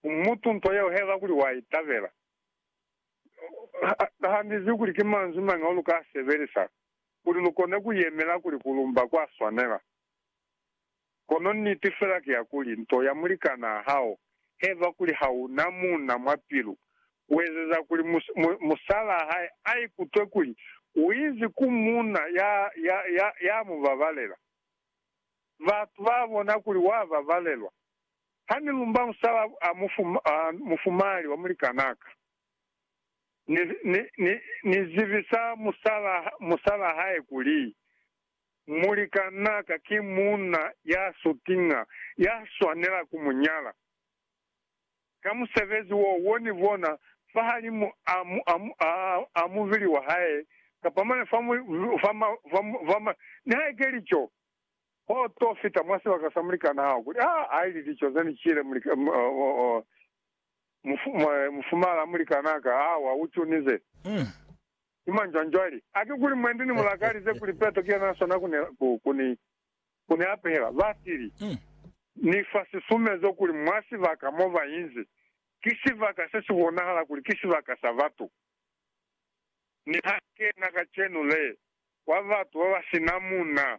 Mutu nto yeo haiba kuli wa itabela, handizi kuli ki manzwi mañi ao lu ka a sebelisa kuli lu kone ku yemela kuli ku lumba kwa swanela. Kono niti fela ki ya kuli, nto ya mulikanaa hao haiba kuli ha u na muuna mwa pilu, u ezeza kuli musalaa hae a ikutwe kuli u inzi ku muuna ya mu babalela. Batu ba bona kuli wa babalelwa, Ha ni lumba musala a mufumali wa mulikanaka, ni zibisa musala hae kuli, Mulikanaka ki muuna ya sutiña ya swanela ku mu nyala. Ka musebezi wo, wo ni bona fahalimu a mubili wa hae, kapa mane fa, nihaike li co, Ho to fita mwa sibaka sa mulikan'a hao kuli, Ha a ili, Lico ze ni cile mufumala mulikan'a ka, ha wa u cunize. Ki mañi cwani cwale? A ki kuli mwendi ni mu lakalize kuli Peto ki yena a swana ku ni apehela? Ba tili, Ni fa sisumezo kuli mwa sibaka mo ba inzi, ki sibaka se si bonahala kuli ki sibaka sa batu. Mi ha kena kacenu le, kwa batu babasina muna,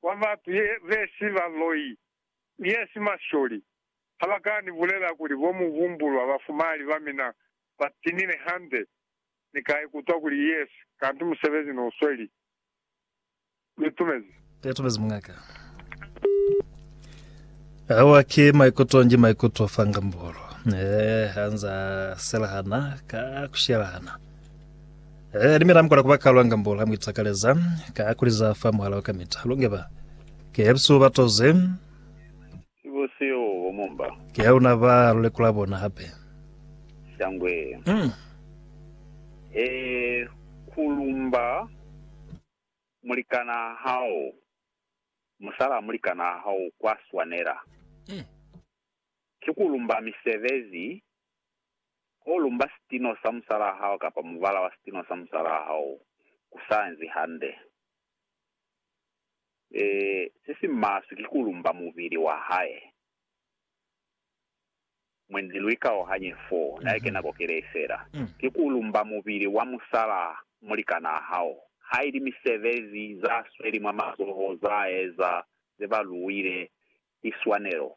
kwa batu ye besi baloi, yesi masholi, ha ba ka ni bulela kuli bo mu humbulwa bafumali ba mina ba tinile hande, Ni ka ikutwa kuli yesi, kanti musebezi no sweli. Ni itumezi. Ni itumezi mungaka. Awa ki maikuto nji maikuto fa ngambolo. Eh, anza selahana ka kushelahana. Eh, ni mina mkola kuba kalwa ngambolo ha muitakaleza ka kuliza fa muhala wa kamita. Lunge ba. Ke ebsu batoze. Ki bo seo bo mo mba. Ki ha luna ba lu lekula bona hape. Shangwe. He ku lumba mulikana hao, musala wa mulikana hao kwa swanela. Ki ku lumba misebezi, ho lumba sitino sa musala hao kapa mubala wa sitino sa musala hao ku sa nzi hande. Se si maswe ki ku lumba mubili wa hae. Mwendi lu ikaohanye fo, na eke nako kelee fela. Ki ku lumba mubili wa musala mulikanaa hao, haili misebezi za sweli mwa mazoho za eza ze ba luwile ki swanelo.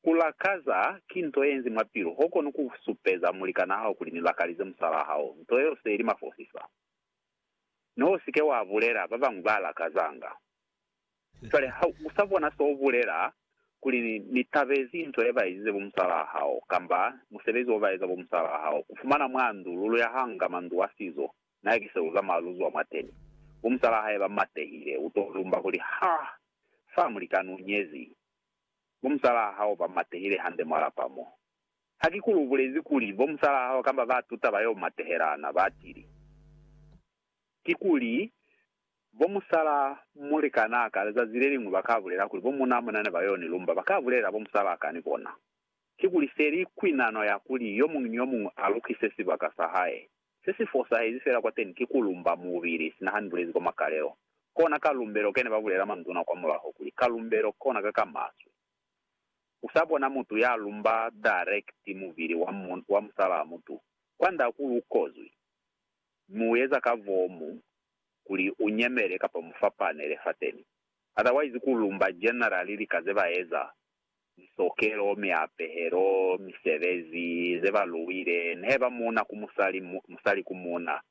Ku lakaza ki nto ye nzi mwa pilu, ho kono ku supeza mulikanaa hao kuli ni lakalize musalaa hao. Nto yeo se li mafosisa. Ne u si ke wa bulela, ba bañwi ba lakazanga. Cwale ha u sa bona s'o bulela, kuli ni tabezi nto ye ba ezize bo musalaa hao, kamba musebezi wo ba eza bo musalaa hao, ku fumana mwa ndu, lu luyahanga mwa ndu wa sizo, na ki se lu zamaya lu zwa mwateni. Bo musalaa hae ba matehile, u t'o lumba kuli, Ha! Fa, mulikani u nyezi. Bo musalaa hao ba matehile hande mwa lapa mo. Ha ki kuli u bulezi kuli bo musalaa hao kamba ba tuta ba yo matehelana, ba tili, Kikuli bo musalaa mulikanaa ka lizazi le liñwi ba ka bulela kuli bo munaa mona ne ba yo ni lumba, ba ka bulelela bo musalaa ka ni bona. Kikuli feli kwi nano ya kuli yo muñwi ni yo muñwi a lukise sibaka sa hae. Se si fosahezi fela kwateni ki ku lumba mubili, sina ha ni bulezi kwa makalelo. Kona ka lumbelo ke ne ba bulela manduna kwa mulaho kuli, Ka lumbelo, kona ka ka maswe. usabona mutu ya lumba direct muvili wa musalaa mutu kwanda kuli ukozwi, mi ueza ka vomu kuli unyemele kapa mufapanele fateni. Otherwise ku lumba generally lika zebaeza, misokelo, miapehelo, misebezi, zeba luwile, neheba muuna ku musali, musali ku muuna,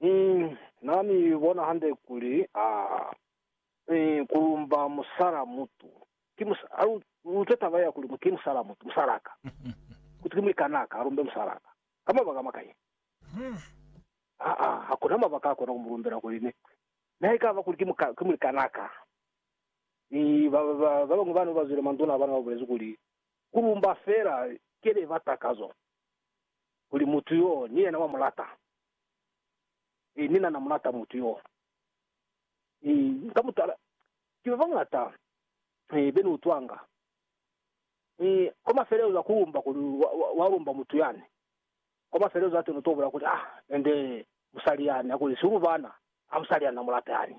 Mi Na mi bona hande kuli a mi kulumba musala mutu. Ki musala. A lu utwe taba ya kuli ki musala mutu, musala ka. Kuti ki muikana ka, alumbe musala ka. Ka mabaka makañi? Aa, hakuna mabaka akona kumulumbela kuli ni, nihaikaba kuli ki muka, ki muikana ka. Mi ba, ba, ba, babañwi bana babazwile manduna abana babulezi kuli, Kulumba fela kele batakazo, kuli mutu yo ni yena wa mulata. Ee, ni na na mulata mutu yo. Ee, ka mutala, ki ba bañata, ee, be ni utwanga. Ee, kwa mafelelezo a ku lumba kuli wa, wa, wa lumba mutu yani. Kwa mafelelezo a teni u to bula kuli, Ah, ende musali yani, hakuli si u mu bana. Ah, musali yani na mulata yani.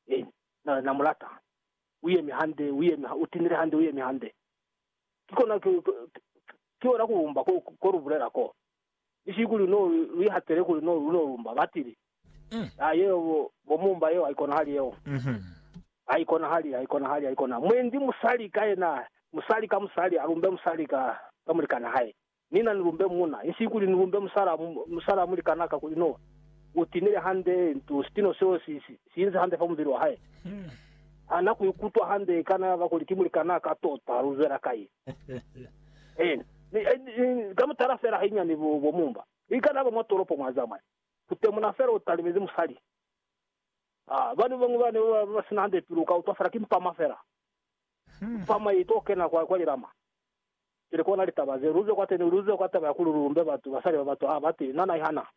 Ee, na, na mulata. U yemi hande, u yemi ha, u tinile hande, u yemi hande. Ki kona, ki, ki, ki, ki kona ku lumba ko, ko lu bulela ko. ni ki kuli no lu ihatele kuli no lu no lumba. Batili, Aa, yeo bo, bo mumba yeo haikonahali yeo. Haikonahali, haikonahali, haikonahali. Mwendi musali ka yena, musali ka musali alumbe musali ka, ka mulikan'a hae. Ni na ni lumbe muuna. Insi kuli ni lumbe musala, musala mulikan'a ka kuli no u tinile hande, nto, sitino seo si, si, si inzi hande fa mubili wa hae. Ha na ku ikutwa hande, kana ba kuli ki mulikan'a ka tota, lu zwela kai? Ka mutala fela hainyani bo mumba, i kana ba mwa tolopo mwa zamaya, ku temuna fela u talimezi musali. Bana ba bañwi bane ba ba si na hande pilu u ka utwa fela ki mpama fela, mpama ye i to kena kwa lilama. Pili kona litaba ze, lu ze kwateni, lu ze kwa taba ya kuli lu lumbe batu, basali ba batu, ha ba ti, Na na i hana.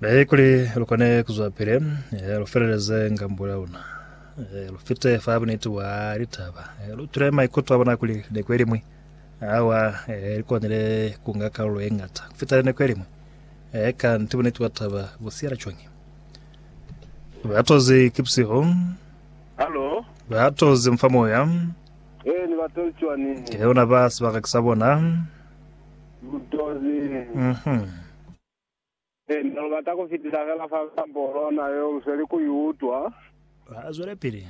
Naye kuli lukone kuzwa pele eh, lufeleleze ngambo ya luna eh, lufite fa buniti wa litaba eh, lutule maikuto a bona kuli neko elimwi awa eh, likonile kunga kalulo ye ngata kufita neko elimwi eh, kanti buniti wa taba busiyela cwañi batozi kipsiho Halo. batozi mfa moya Eh, ni batoli cwani. ke ona ba sebaka ke sa bona Mutozi. Ee, ne lu bata ku fitisa fela fa nsambo lona yo lu sweli ku i utwa. Ba zwelepili.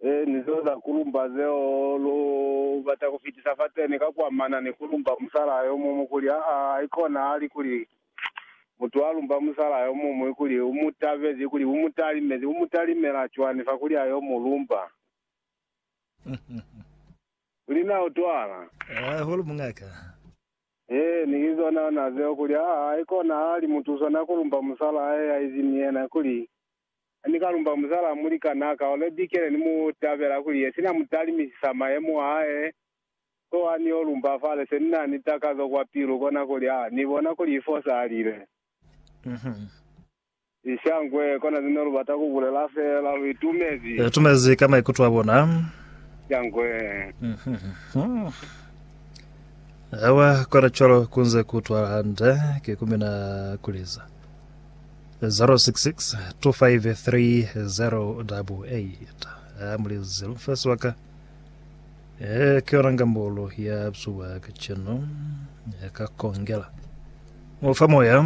Ee, ni zeo za ku lumba zeo lu bata ku fitisa fateni ka ku amana ni ku lumba musalaa yo muñwi kuli, aa, haikona hali kuli mutu a lumba musalaa yo muñwi kuli u mu tabezi, kuli u mu talimezi, u mu talimela cwani fa kuli a yo mu lumba? Kuli na utwala? Haa, holo mungaka. Hee, ni ki zona na zeo, kuli, aa, haikona ha li mutusa na ku lumba musalaa he haizi ni yena, kuli, Ha ni ka lumba musalaa mulikanaa ka, ole bikele ni mu tabela, kuli, ye sina mu talimisisa mayemo a hae, so ha ni yo lumba fale, se ni na ni takazo kwa pilu, kona kuli, aa, ni bona kuli i fosalile. Uh-huh. Lishangwe, kona zine lubata kubulela feela luitumezi. Itumezi ka maikuto abona. Lishangwe. Awa kona cwalo kunze kuutwala hande, ki kumina kuliza. 066 253088. Ah, mulizi lumfesi waka. Eh, ki yona ngambolo ya bzuba kacenu. Yakakongela. Mufa moya.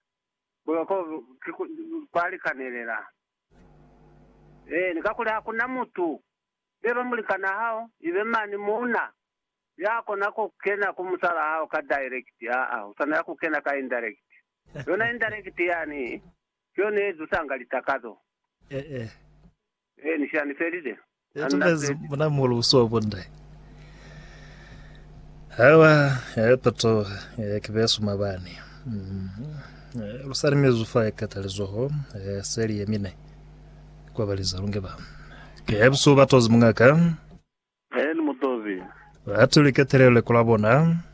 Kuba ko ki ku kwa likanelela. Eeni, kakuli hakuna mutu, neba mulikanaa hao, ibe mani muuna, ya kona ku kena ku musalaa hao ka direct. Aa, u swanela ku kena ka indirect. Yona indirect yani ki yona ye zusanga litakazo. Ee. He, ni shani felile. Itumezi muna mulu usuwa bunde. Hawa ya patoha ya kibesu mabani. Mm. Lusali mezu fa ekata lizoho ya seli ya mine. Kwa baliza lunge ba. Ke ya busu batozi mungaka. He, ni mutozi. Batu liketelele kula bona.